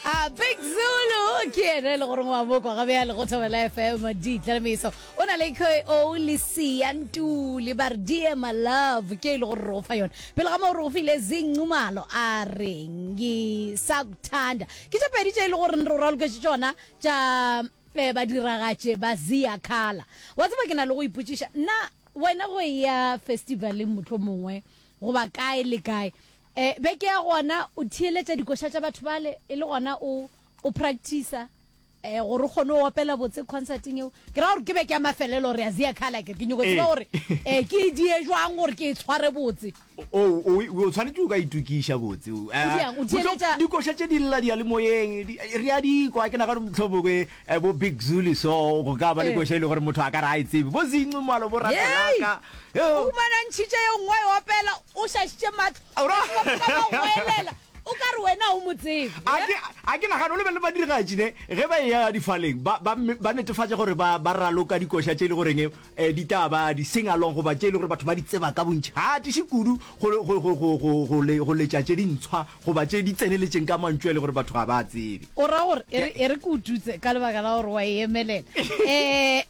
a big zulu ke ene e le goreng wa bokwa ga bjale go thobela fm ditlalemeso o na le ko le siantule ba re die my love ke e le gore re ofa yone pele ga moo re ofile zincumalo a reng ke sa kuthanda ke tše pedi tše e le gore re o raloketse tšona tša um eh, badiragatše ba zia khala wa tseba ke na le go ipotšiša nna wena go ya festivaleng motlho mongwe goba kae le kae E, beke ya gona o theeletša dikoša tša batho bale, e le gona o, o practicer e, gore o kgone o opela botse concerting eo. Ke ra gore ke beke ya mafelelo re a zea kgale, a ke ke nyoko tseba gore e, ke e die jwang gore ke e tshware botse. O, o, o tshwanetše o ka itukiša botse. O diang, o theeletša. Dikoša tše di lla diyalemoyeng, di, re a di kwa, ke nagana mohlomongwe Eh bo big zulu so go ka ba le koša e le gore motho a ka re a e tsebe bo zincu malo bo ratelaka o humanantšhitše yo nngwe e opela o šašitše matlooelela o ka re wena o mo tsebe a ke nagane o lebe le badirigatši ne ge ba e ya difaleng ba netefatša gore ba raloka dikoša tše e le goreng um ditaba di seng along goba tše e le gore batho ba di tseba ka bontšha a tiše kudu go letša tše dintshwa goba tše di tseneletšeng ka mantšu a le gore batho ga ba a tsebe. O ra gore e re, e re ke o tutse ka lebaka la gore wa e emelela. Um,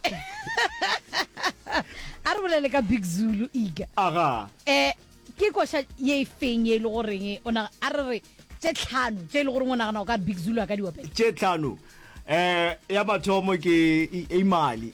a re bolele ka Big Zulu, Iga. Aga. Um, ke koša ye e feng ye e le goreng o na a re re tše tlhano tše e le goreng o nagana o ka Big Zulu a ka di opela? Tše tlhano. Um, ya mathomo ke i- imali.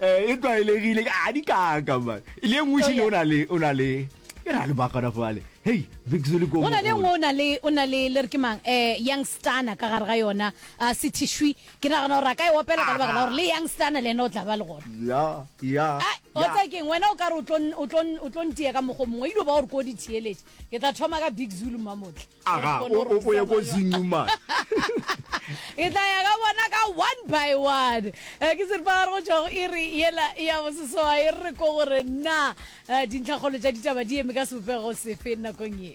Eh, e tlwaelegile a di kaka man le e nngwe šile o na le o na le e ra le bakana fale hei bixo le go na le nngwe o na le o na le le re ke mang eh youngstana ka gare ga yona a ah, sethishwi ke nagana gore a ka e opela ka lebaka la gore le youngstana le ena o tla ba le gona ya ya eh, o tsa keng wena o ka re o tlo ntiya ka mokgo mongwe e dio ba gore ko di theeletse ke tla thoma ka big zulu mamotle aga o ye ko zingu man ke tla ya ka bona ka one by one eh, ke seripa gare go tšwago e re yela e ya bosesoa e re ko gore na eh, dintlhakgolo tša ditaba di eme ka sebopego sefe nakong ye